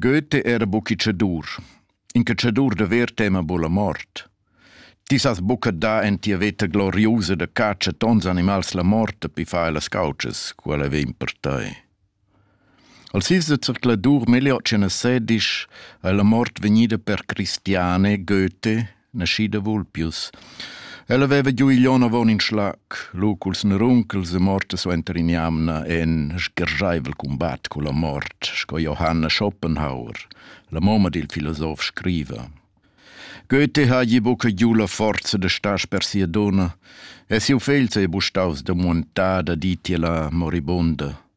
Goethe era buc in tschedur. In tschedur da ver tema buca la mort. Ti sas buca dar en tia veta gloriusa da catscha tons animals la mort pi fai las caucas, quella vegn per tei. Al sis da zercladur meglio che na sedisch è la mort vegnida per Cristiane Goethe nascida Vulpius. Ella veva giu igl onn avon in schlac, lu culs neruncels e morta suenter in jamna en sgergeivel combat culla mort, sco Johanna Schopenhauer, la mamma dil filosof scriva. Goethe hagi buca giu la forza da star per sia donna e siu fegl sei bustaus da montada ditiela moribunda.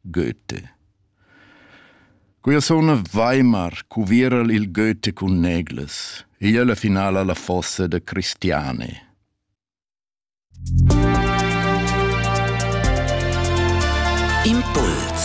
Goethe. Quia suna Weimar cuviera'l il Goethe cun neglas e i la finala la fossa da Cristiane. Impuls